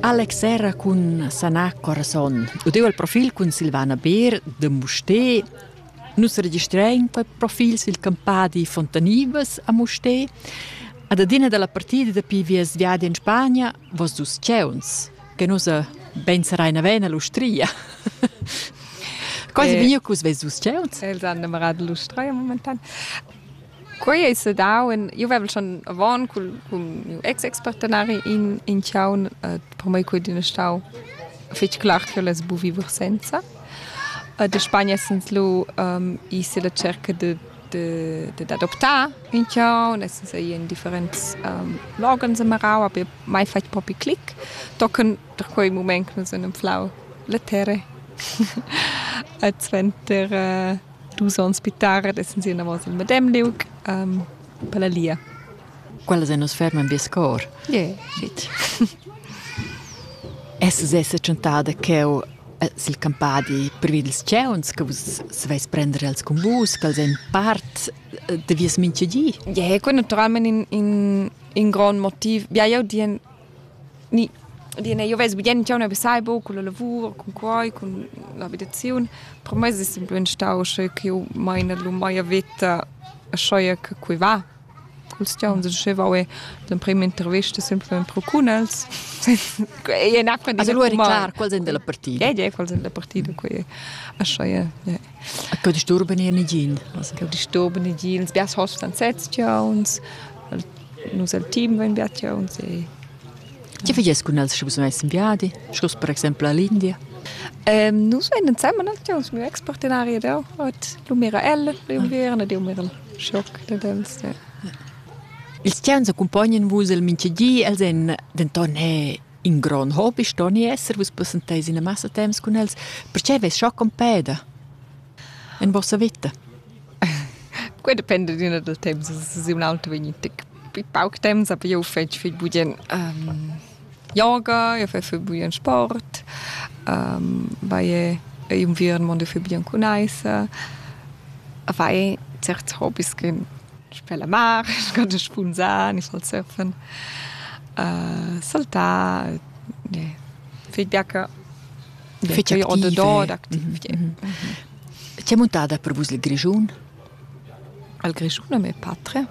Alex era cun sanar corazon. Udeu al profil cun Silvana Beer de Musté. Nus registrain per profils il campadi Fontanibas a Musté. Ad adina dalla partida dapi vias viadi in Spagna, vos dus ceuns, che nus ben sarein avena l'ustria. Quasi eh, bio cus ves dus ceuns? Els han innamorato l'ustria momentan. Quei ei sedau in, jeu vevel schon avon cun, cun miu ex-ex-partenari in, in tgaun, per mei quei d'ina stau fetg clar ch'jeu less buca viver senza. da Spagna essens lu i silla cerca de, de, dad adoptar in tgaun, essens ei in differents logans amarau, aber mai fatg propi clic, tochen da quei mument che nus han anflau la terra. Suenter dus ons pitar ed essan si enavos al medem liug um, per la lia. Quella se nus ferman vies cor. Yeah. Shit. Es sesa chantada cheu eh, sil campadi privi dils ceuns che vus saveis prender els cun vus, che els ein part eh, de vies minchegi. Yeah, quel naturalment in in in grand motiv. Ja, jau dien Ni, dine, io vess bien tgau ne vesai buc cun la lavur, cun quai, cun l'abitaziun, per mei es semplem stau sche ch'jeu maina lu mia veta aschia che quei va. Culs giauns dschevau è l'emprema intervista semplem pro cun els. Ei è ün'acqua da Allora è clar, quals ein dalla partida. Ei ei quals ein dalla partida, quei è aschia, ja. Co disturba ni nigin? Co disturba nigin? Biars hostan sezs tgauns, nus el team vein bia tgauns e Tge fagies cun els, sche vus veis in viadi, schluss per exempel all'India? Ähm, nus vein ensemen als tgauns, miu ex-partenari ed eu. Ot, lu mira el pli unviern ed eu mira il schoc dad els. Ja. Ils tgauns accumpognan vus el mintga di, els èn denton he In grond hobi sto ni esser, vus passenteis ina massa temps cun els. Perche veis scha compeda? En vossa vita? Quei depende d'una del temps, es un auto vegnit pauc temps, aber io fetg viel bugen um, yoga, io fai viel bugen sport, um, vai inviern mondo viel bugen cun eisa, vai certs hobbies che per la mar, sco da spunzar, ni sal surfen, uh, saltar, ne, fich biaca. Fich activa. C'è muntata per vus il Grischun? Il Grischun è mia patria.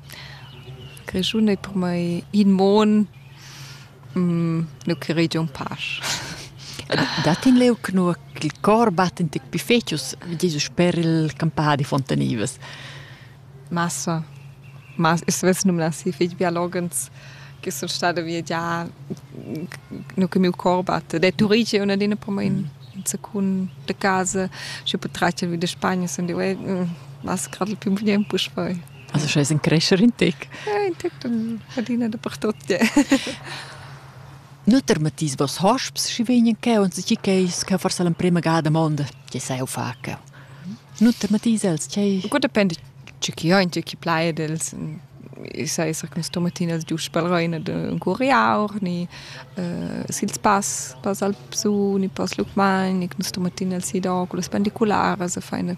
Il Grischun è per me in mon nu creigi ün pasch. Dat in leu cnua ch'il cor batt in tic pifecius, Jesus sper il campadi Fontanivas. Massa. Ma es svess num las fich biologens che sun stada via già nu che miu cor batte. De Turigi è una dina per me in secun de casa, sche potrà vi de Spagna sun dieu, eh, mas grad il più bien pus poi. Also schon ein Crescher in Tech. Ja, in Tech dann hat ihn dapertot. Nutter Matthias, was hast du schon weniger gegeben und sie gehst kann forse l'emprima gada mondo che sai fa che. Nutter Matthias els, che Gut depende ci chi ha in ci chi plai dels i sai sa che sto mattina els giusto per reina un curiaur ni uh, sils pass pass al psu ni pass lukman ni sto mattina els si da con le spendicularas a fai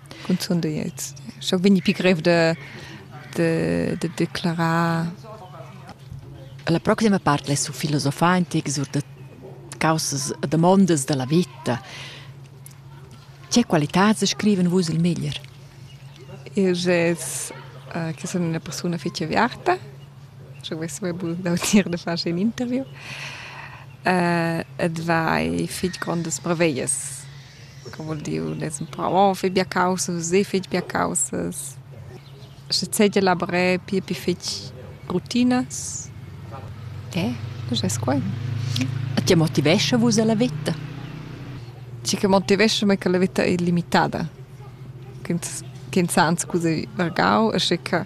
cunzun deiets scho vegni pi grev de de de declarar la proxima part le su filosofar antic sur de causas damondas della vita che qualità se scriven vus il meglier es uh, che sono una persona fece aviata je vais dautir de fare un interview uh, et vai fich grandes brevellas Cum voul dir ün es ün pa oh fe bia caussas, seh fetsch bia caussas. Sche seigi lavré pia pi fetg rutinas. Eh, quest es quai. E tge motivescha vus a la veta? Tgi che motivescha mei che la veta ei limitada. Ch'ins ch'ins ha anc cusa vargau e sche che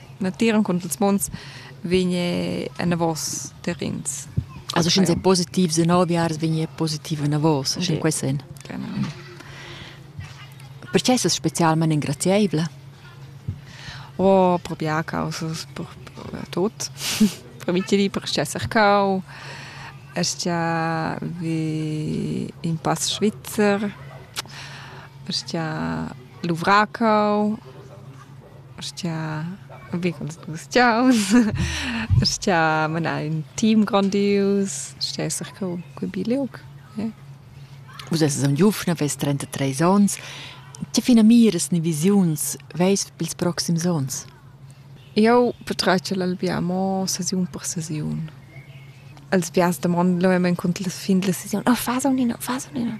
natieren con ils mons vigne en vos terrins. Also schin se positiv se noviars vigne positiv en vos, schin quei sen. Genau. Perché es specialment ingrazieibla? Oh, proprio a causa per, per tot. per mi ti per esser cau. Est ja vi in pass Schweizer. Est ja Luvracau. Sch'ia vigls gustiaus, sch'ia mena ün team grondius, sch'ia ess eir cur cul bi liug, ie. Vus esses aunc giuvna, vess trentatrés ons. Tge finamiras ni visiuns veis per ils proxims ons? Eu patratgel al vià mo sesiun per sesiun. Els vias damondan lura encunter la fin della sesiun, oh, fas aunc ina, fas aunc ina.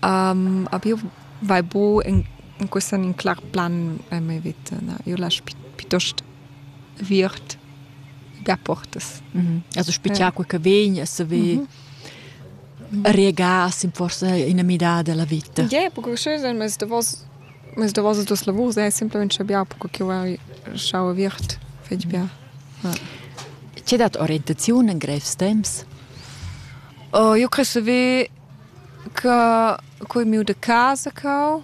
A più vai bu in cuss en in clar plan en mia vita. Na, io lasch piuttost viert gaportas. Also spichar quei che vegn e saver regarsi forse in mità della vita. Ie, perché schön, mas davos mas davos dos lavurs è semplicemente bia, perché io schau viert fetg bia. C'è dat orientaziun in grev temps? Io credo ve Ca cur miu da casa cau,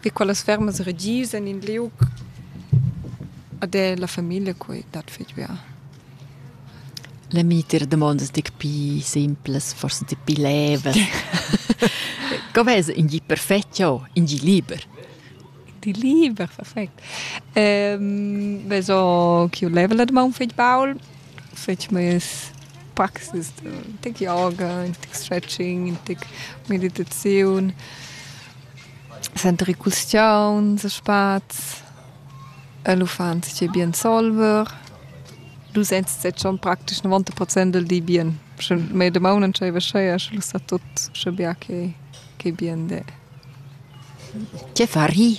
vi quellas fermas regiusan in liug ed è la famiglia cui dat fetg bia. La mintga damonda es gnit pii simplas, forsa gnit pii lever. Co vess in gi perfet jo, in gi liber? Di liber, perfect. Vess ho quiu lever la damaun fetg baul fetg meias praxis da tec yoga, in tec stretching, in tec meditaziun, sentir il custiaun, se spaz, el uffant schi bien solver. Du sents set schon praktisch 90 Prozent del di bien. Sche mei damaun non sch'ei vascheia, sche lu sta tut sche bia che che bien de. Che fari?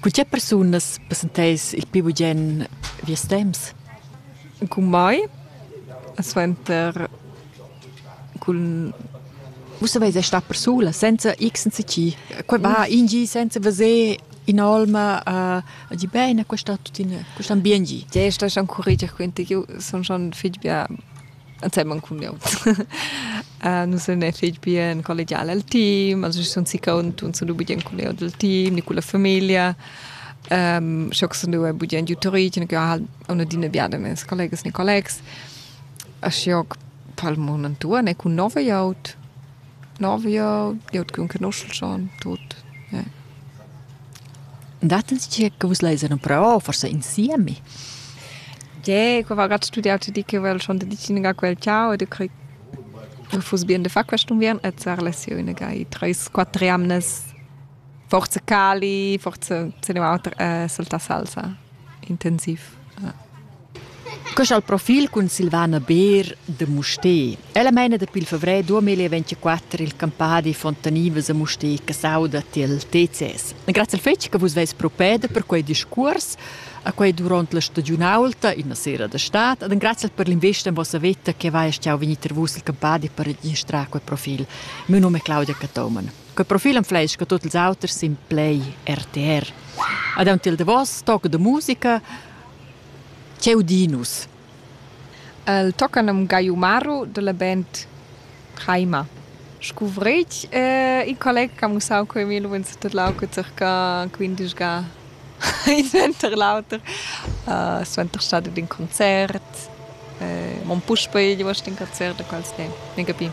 Cu tge persunas passenteis il pi bugen vies temps? Cun mai, suenter cun Vus saveis star persula, senza x senza c. Quei va in gi senza veser in'olma a dir bene, questo tuttina, questo ambiente. Ti stai schon currigia, quindi io sono schon fitg bien ensemen cun eu. uh, nus ne fich bien collegial al team, also ich sun si cont und sun budien cun eu del team, ni culla famiglia. Um, scho sun due budien tutorich, ne ha una dina biada mes collegas ni collegs. A scho palmon antua ne cun nove aut. Novio, glieud ch'ün conoschel schon tut, ja. Dat'ns tgei che vus leis en però, forse insieme? Ge, qua va grad studiau ti di che vel schon de dicina quel ciao e de crei che fuss bien de far quest unviern e zar lesione gai treis quattro amnes forse cali, forse se ne auter eh, solta salsa intensiv. Ja. Quest ha il profil cun Silvana Beer da Mustér. Ella meina dapi il favrer 2024 il campadi Fontanivas a Mustér che sauda tiel TCS. Grazie al fetg che vus veis propeda per quei discurs a quei duront la stagiunaulta, ina sera da stad, ed grazie per l'investa en vossa veta che vai stau vegnir ter vus il campadi per registrar quei profil. Mio nome è Claudia Catoman. Quei profil am fleisch che tutti els auters sin Play RTR. Ad un til de vos, toc de musica, Ch'eu di nus. El tocca nom Gaiumaru dalla band Chaima. Scuvretg e il colleg ha mussau co Emil vegn surtadlau cun circa quindeschga in suenter l'auter. suenter stada d'in concert. mon puspei uost in concert da quels temps, minchapi.